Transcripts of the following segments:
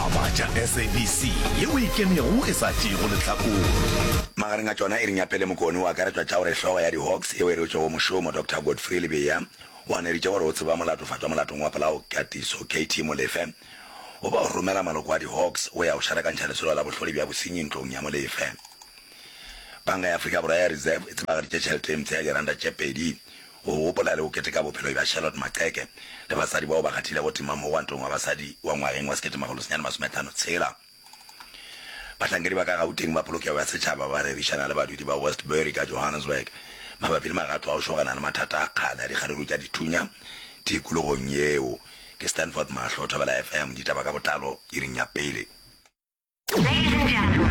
A Batša SABC yeo e ikemego e sa tšeego lehlakore. Magareng a tšona e re Nyaphele Mokone o akaretšwa tša gore hlogo ya di-Hawks yeo e reotšwego mošomo, Doctor Godfrey Lebeya, o aneritše gore o tseba molatofatšwa molatong wa polao Katiso KT Molefe goba o romela maloko a di-Hawks go ya go šarakantšha lesolo la bohlole bja bosenyi ntlong ya Molefe. Panka ya Afrika Borwa ya Reserve e tsebagaditše tšhelete e mpsha ya diranta tše pedi Go gopola le go keteka bophelo bja Charlotte Maqheke le basadi bao ba kgathilego tema mo Gwantong wa Basadi wa ngwageng wa sekete makgolo senyane masome tlhano tshela, bahlankedi ba ka Gauteng ba polokego ya setšhaba ba rerišana le badudi ba Westbury ka Johannesburg mabapi le magato a go šogana le mathata a kgale a dikgaruru tša dithunya tikologong yeo. Ke Stanford Mahlo, Thobela FM, ditaba ka botlalo, iring ya pele.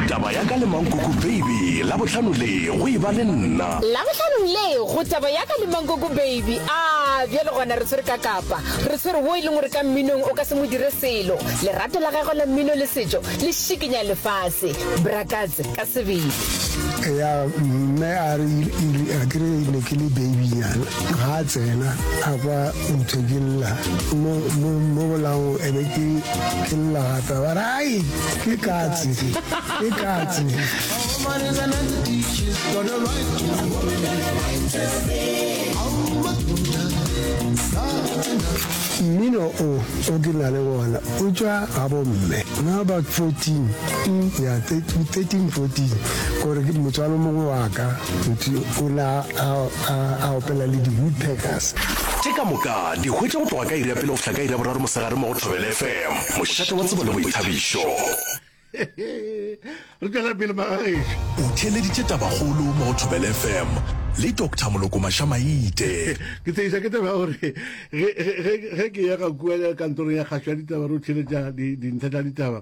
taba ya ka le mankoko baby la bohlano le go e ba le nna la bohlanong le go taba ya ka le mankoko baby a bjale gona re tshwere ka kapa re tshwere wo e leng gore ka mminong o ka se mo dire selo lerato la gagwe la mmino le setšo le šikinya lefase brakatse ka sebele ya mme a re a kere ne ke le babynyana ga a tsena a kwa Eupša ke lla mo, mo, mo bolaong e be ke, ke lla gape ba re ai ke katse ke katse mmino o o ke na le wona o tšwa ga bomme na about 14 mm, ya 13 14 gore motswalo mongwe wa ka o na A a opela le di-woodpeckers. Tše ka moka di hwetša go tloga ka iri ya pele go fihla ka iri ya boraro mosegare mo go Thobela FM, mošate wa tsebo le boithabišo. Re tšwela pele magagešu. O theeleditše Tabakgolo mo go Thobela FM le Doctor Moloko Mashamaite. Ke tshegiša ke taba ya gore ge ke ya ga kua kantorong ya kgašo ya ditaba re o theeletša dintlha tša ditaba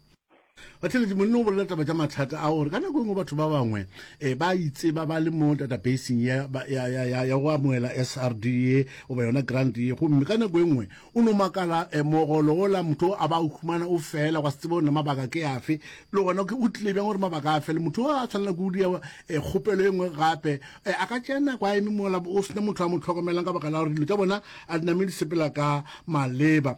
batheletše monna o bolela taba tša mathata a gore ka nako e nngwe batho ba bangwe um ba itseba ba le mo databaseng ya go amoela s r d ye goba yona grant ye gomme ka nako e nngwe o no makala um mogolo ola motho a ba o humana o fela gwa se tsebe gore mabaka ke afe le gona o tlile bjang gore mabaka a fele motho a tshwanela ke o dia e, kgopelo e nngwe gape e, a ka tšea nako a eme mola o sena motho a mo tlhokomelang ka baka la gore dilo tša bona a dinamedi sepela ka maleba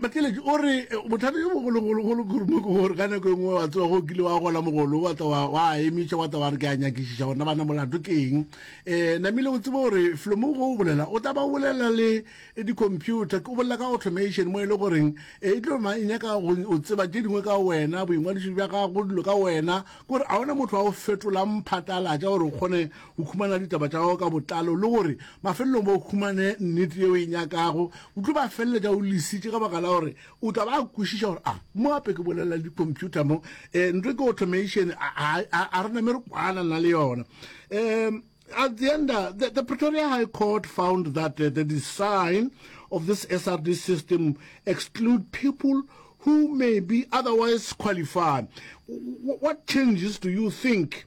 Bakeletši o re bothata jo bogologologolo kurumo ke gore ka nako e nngwe wa tsewa go kile wa gola mogolo wa tla wa emetša wa tla wa re ke a nyakišiša gona bana molato ke eng um namile o tsebe gore flomo go o bolela o tla ba bolela le di-computer o bolela ka automation mo e le goreng um e tlo ma e nyaka go o tseba tše dingwe ka wena boingwadiši bja gago dilo ka wena kore a ona motho wa o fetolang phatlalatša gore o kgone o khumana ditaba tša gago ka botlalo le gore mafelelong ba o khumane nnete yeo e nyakago o tlo ba felela ja o lesitše ka baka la gore o tla ba kwešiša gore a mo gape ke bolelela di-computer mo um nto ke automation a re name re kwana nna le yona um at the end, uh, the, the, Pretoria High Court found that uh, the design of this SRD system exclude people who may be otherwise qualified. W what changes do you think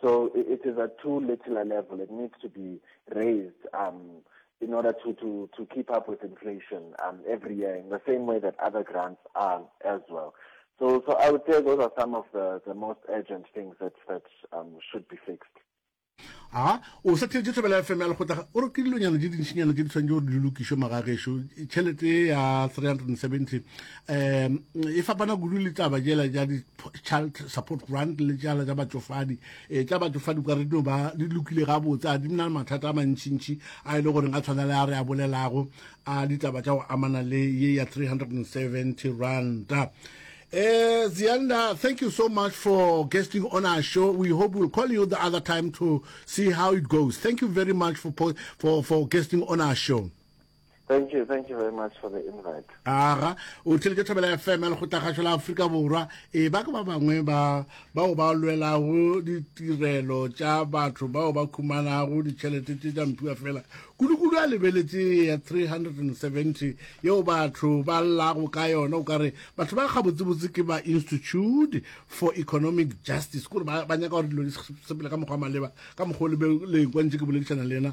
So it, it is at too little a level. It needs to be raised um, in order to, to, to keep up with inflation um, every year in the same way that other grants are as well. So, so I would say those are some of the, the most urgent things that, that um, should be fixed. a o sa theetse thobela fm ya lekgotla o re ke dilonyana di dintšhinyana tse di tshwanetse gore di lokišwe magagešo tšhelete ya 370 um e fapana kudu le taba jela ja di-child support grant le jala ja batšofadi um tša batšofadi ka re dino ba di lokile gabotse a di na le mathata a mantšintši a e le goreng a tshwana le a re a bolelago a ditaba tša go amana le ye ya 370 ranta Uh, eh, Zianda, thank you so much for guesting on our show. We hope we'll call you the other time to see how it goes. Thank you very much for for for guesting on our show. Thank you, thank you very much for the invite. Aga, o tlile ke Thobela FM ya Lekgotlakgašo la Afrika Borwa. E ba ke ba bangwe ba bao ba lwelago ditirelo tša batho bao ba khumanago ditšhelete tše tša mpiwa fela. Kudu-kudu a lebeletse ya 370 yeo batho ba llago ka yona o ka re batho ba gabotsebotse ke ba Institute for Economic Justice kore ba nyaka gore dilo di sepele ka mokgwa maleba ka mokgwa o lebeleng kwa ntse ke boledišana le yena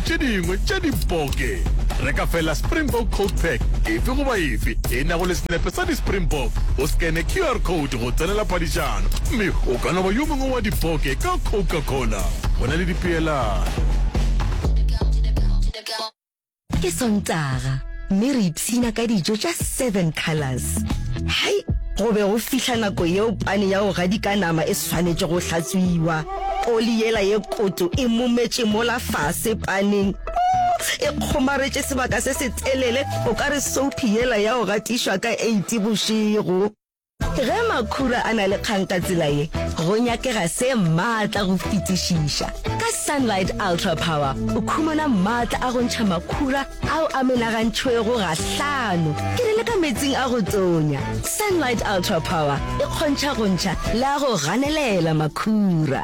tše dingwe tša diboke. Reka feela Springbok Coat Pack efe goba efe e nago le senepe sa di-Springbok, o scanne QR code go tsenela phadišano, mme o ka no ba yo mongwe wa diboke ka Coca-Cola. Go na le dipeelano. Ke Sontaga, mme re ipshina ka dijo tša Seven Colours. Hai! Go be go fihla nako yeo pane ya go gadika nama e swanetšego go hlatswiwa. Oli yela ye kotu e mumetše mola fase paneng. E kgomaretše sebaka se se telele, o ka re soupi yela ya go gatišwa ka eiti bošego. Ge makhura a na le kgang ka tsela ye, go nyakega se maatla go fetišiša. Ka Sunlight Ultra Power o khumana maatla a go ntšha makhura ao a menagantšhwego gahlano, ke re le ka meetsing a go tonya. Sunlight Ultra Power e kgontšha go ntšha le a go ganelela makhura.